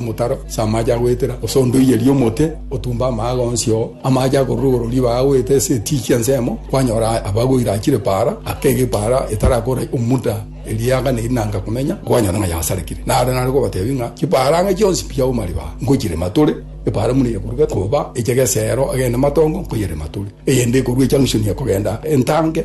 omotaro ase amaache agoetera, gose ondoiyerie omote, otumbe amaaga onsi oo, amaache akorure igoro ribaga agoeta ase etichi ensemo, kwanyora abagweire achire paara, akega epaara etarakora omuda eriaga neri nanga komenya, kwanyora ng'a yasarekire. Naro nare kobatebia ng'a chipaara ang'e chionsi mbiauma ribaga, ngochirema tore, epaara buna eyekoruga koba eche geseero agende matongo, nkoyerema tore, eyende ekorua echang'usuni ekogenda entange,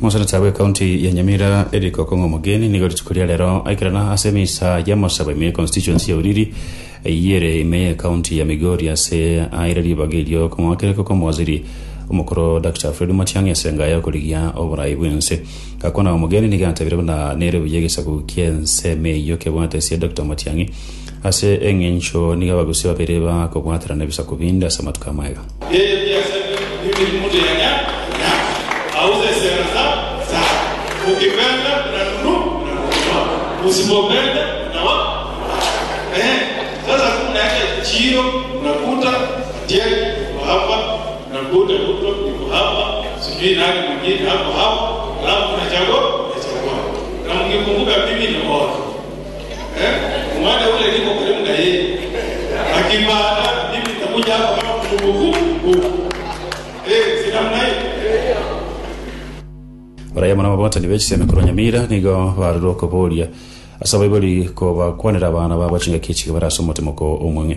Mosenete bw'Ekaunti ya Nyamira Eric Okong'o Mogeni nigo rituko ria rero aikerana ase emisa y'amasabo ime y'econstituency ya Uriri eyio ere ime y'Ekaunti ya Migori ase aire ribaga erio okong'wakereka kw'omowaziri omokoro Dr Fred Matiang'i ase engae y'okorigia oborai bw'ense. Gakwana Omogeni nigo atebirie buna nere buya egesaku ki'ensemo eyio kebwate ase Dr Matiang'i Ase engencho nigo abagusii babere bakobwaterana ebisaku binde ase amatuko amaya. Barabwo na ababwatani be chisemi korwa Nyamira nigo barorire okoboria ase abaibori kobakwanera abana babo chingaki echiga bare ase omote moko omong'e.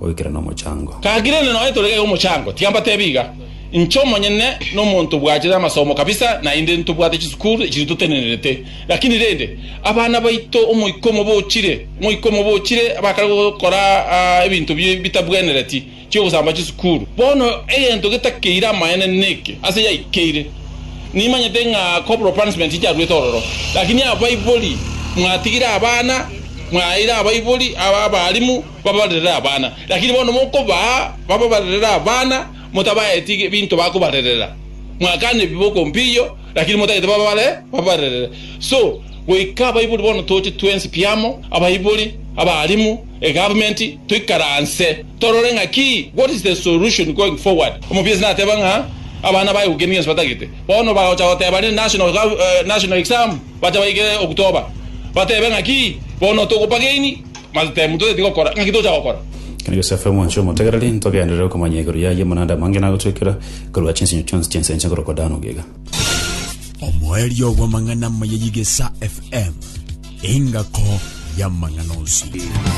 goikera nomochango. Gaki rende nonya tore gaiga omochango, tiga mbatebi iga, Inche omonyene nomonto bwachete amasomo kabisa, naende ntobwate chisukuru echiria totenenerete, lakini rende, abana baito omoika omobochire, omoika omobochire bakare gokora ebinto bitabwenereti, chi'ogosamba chisukuru. Bono egento getakeire amaene neke, ase yaikeire, nimanyete ng'a corporal punishment yaruete ororo, lakini abaibori mwatigire abana, mwaeire abaibori, abarimu. Babarerere abana, lakini bono mokobaa bababarerere abana, motabaeti ebinto bakobarerera, mwakana ebi boko mpiyo, lakini motagete babare babarerere. So, goika abaibori bono toche twensi pi amo, abaibori, abaalimu, egavumenti, toikaranse torore ng'a ki, what is the solution going forward. Omobiesi nateba ng'a abana baye gokenda gionsi batagete, bono bagocha goteba rende national gov, national exam, bacha baike okutoba, batebe ng'a ki, bono togopageini, Matetemu toteti gokora, ng'aki tocha gokora? Ekero Yosefu omonchie omotegereri, ntogenderere okomanya igoro y'ayio amang'ana ande amange nagotwekera korwa chinsinyo chionsi chi'ense enche korokwa Dani ogiga. Omoerio bw'amang'ana amaya y'Egesaa FM, engako y'amang'ana onsi.